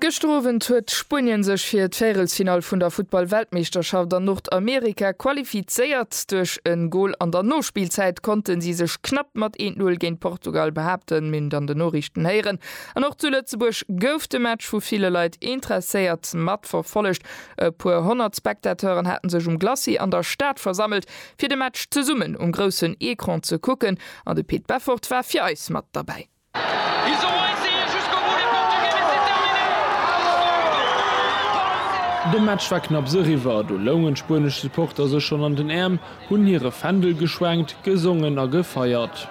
Gëschter Owend huet Spuenien sech fir d'Véierelsfinall vun der Futtball-Weltmeeschterschaft an Nordamerika qualifizéiert. Duerch e Gol an der Nospillzäit konnte si sech knapp mat 1, 0 géint Portugal behaapten, mir hunn dann den Noriichten héieren. An och zu Lëtzebuerg gouf de Match vu ville Leit interesséiert matverfollegt. E puer honnert Spectateuren hate sech um Glacis an der Stad versammelt, fir de Match zesummen um groussen Ecran ze kucken an de Pit Beffort war fir eis mat derbäi. De Match war knapps eriwwer, do loungen d'spuenesch Supporter sech schonn an den Äerm, hunn hire Fändel geschwenkt, gesongen a gefeiert.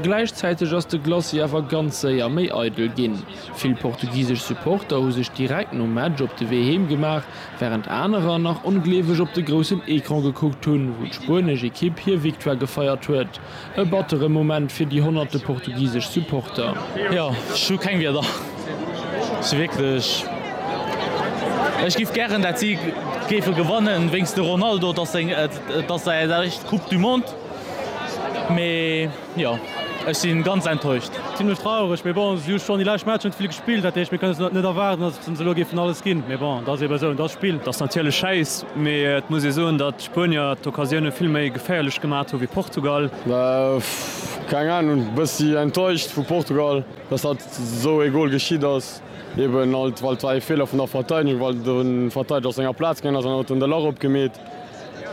Gläichzäiteg ass de Glacis awer ganz séier méi eidel ginn. Vill portugisesch Supporter hu sech direkt nom Match op de Wee heem gemaach, Wärend anerer nach ongleeweg op de groussen Ecran gekuckt hunn, wou d'spuenesch Ekipp hir Victoire gefeiert huet. E battere Moment fir déi honnerte portugisesch Supporter. Jo, ech hu keng Wierder. Ech si wierklech, ech giff gären dat si géife gewannen, wéinst de Ronaldo, et ass seng, et ass säi éischt Coupe du Monde, mee. Jo, ech si ganz enttäuscht. Zimlech traureg, mee bon, si hu schonn déi lescht Matcher net vill gespillt, dat heescht mir kënne se net net erwaarden, datt se elo géifen alles ginn. Mee bon, dat ass ebe esou, et ass d'Spill. Dat ass natierlech schäiss, mee et muss ee soen, datt d'Spuenier d'Occasioune vill méi geféierlech gemaat hu wéi Portugal. Keng Ahnung, bëssi enttäuscht vu Portugal, datt hatt esou ee Gol geschitt ass. Eben halt, well et war ee Feeler vun der Verteidegung, well de Verteideger aus senger Plaz gaangen ass an huet den Delort opgemeet.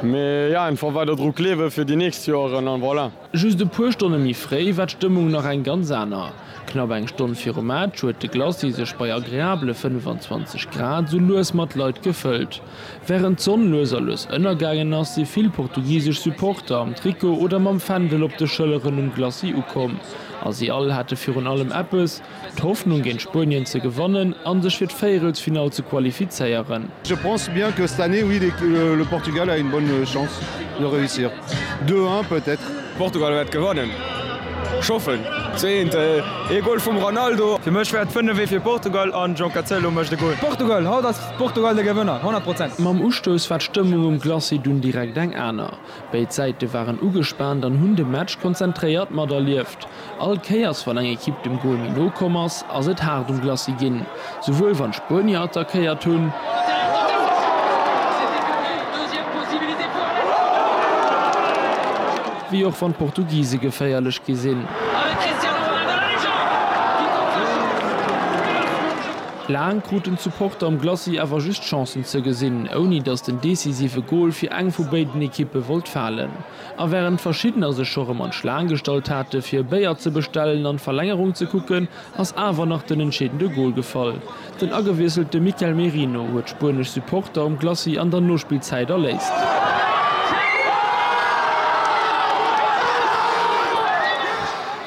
Mee jo, einfach weider dru kleewen fir déi nächst Joeren an voilà. Just e puer Stonne méi fréi war d'Stëmmung nach eng ganz aner. Knapp eng Stonn virum Match huet de Glacis sech bei agreabele 25 Grad sou lues mat Leit gefëllt. Wärend d'Sonn lues a lues ënnergaangen ass, si vill portugisesch Supporter am Trikot oder mam Fändel op de Schëlleren um Glacis ukomm a si all hate virun allem eppes, D'Hoffnung géint Spuenien ze gewannen an sech fir d'Véierelsfinall ze qualifizéieren. Je pense bien que cette année oui le Portugal a une bonne chance de réussir 2 un peut être. Portugal wärt gewannen ech hoffen ze een ee Goal vum Ronaldo. Fir mech wär et 5 ee fir Portugal an João Cancelo mecht e Goal. Portugal, haut ass Portugal de Gewënner 100 Prozent. Mam Ustouss war d'Stëmmung um Glacis dunn direkt eng aner. Béid Säite waren ugespaant an hunn de Match konzentréiert materlieft. All Kéiers wann eng Ekipp dem Gol méi no komm ass, ass et haart um Glacis ginn, souwuel wann d'Spuenier attackéiert hunn, wéi och wann d'Portugise geféierlech gi sinn. Laang kruten d'Supporter am Glacis awer just Chancen ze gesinn, ouni datt den decisive Gol fir eng vu béiden Ekippe wollt falen. A wärend verschiddener sech scho rëm an d'Schlaang gestallt hate fir e Béier ze bestellen an d'Verlängerung ze kucken, ass awer nach den entscheedende Gol gefall. Den agewiesselte Mikel Merino huet spuenesch Supporter um Glacis an der Nospillzäit erléist.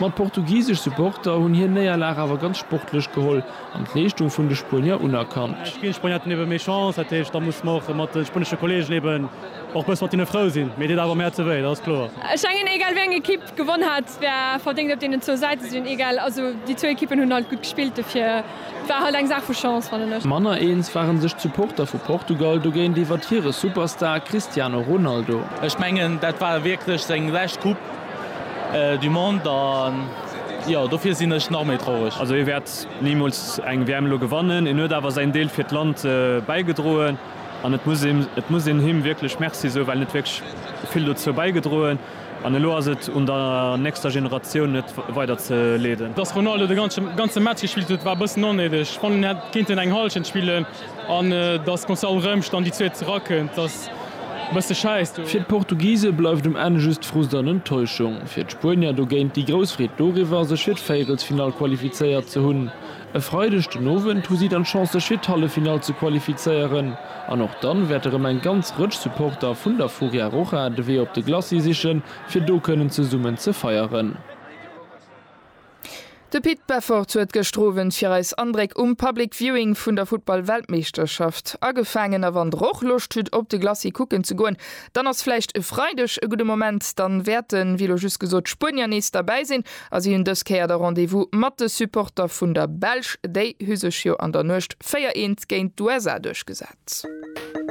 Ma d'portugisesch Supporter hunn hir Néierlag awer ganz sportlech geholl an d'Leeschtung vun de Spuenier unerkannt. Ech ginn Spueniaten ebe méi Chance, dat heescht, da muss mer och mat de spuenesche Kolleegen eben och bësse mat hinne frou sinn, mee et deet awer mäer ze wéi, dat ass kloer. Ech mengen, egal wéi eng Ekipp gewonn hätt, wär verdéngt op deenen zwou Säite sinn egal. Also déi zwou Ekippen hunn halt gutt gespillt, dofir et war halt eng Saach vu Chance, fannen ech. Manner eens ware sech d'Supporter vu Portugal dogéint iwwert hire Superstar Cristiano Ronaldo. Ech mengen, dat war wierklech seng lescht Coupe. du monde an jo dofir sinn ech nach méi traureg. Also hie wäert nimools eng WM elo gewannen. En huet awer säin Deel fir d'Land bäigedroen an et muss een et muss een him wierklech Merci soen, well en huet wierklech vill dozou bäigedroen an elo ass et un der nächster Generatioun et weider ze leeden. Dass Ronaldo de ganze ganze Match gespillt huet war e bëssen onnéideg. Ech fannen en hätt kéinten eng Hallschent spillen. An dass d'Gonçalo Rëmsch dann déi zweet zerakënnt, dass e bësse schäisst. Fir d'Portugise bleift um Enn just Frust an Enttäuschung. Fir d'Spuenier dogéint déi grouss Freed doriwwer, sech fir d'Véierelsfinall qualifizéiert ze hunn. E Freideg den Owend hu si dann d'Chance, sech fir d'Halleffinall ze qualifizéieren. An och dann wäert erëm eng ganz Rëtsch Supporter vun der Furia Roja de Wee op de Glacis sichen, fir do kënnen zesummen ze feieren. De Pit Beffort huet gëschter Owend fir eis Andréck um Public Viewing vun der Futtball-Weltmeeschterschaft agefaangen. A wann der och Loscht hutt op de Glacis kucken ze goen, dann ass vläicht e Freideg e gudde Moment. Dann wäerten, wéi elo just gesot, d'Spuenier nees derbäi sinn a si hunn dës Kéier da Rendez-vous mat de Supporter vun der Belsch. Déi hu sech jo an der Nuecht 4, 1 géint d'USA duerchgesat.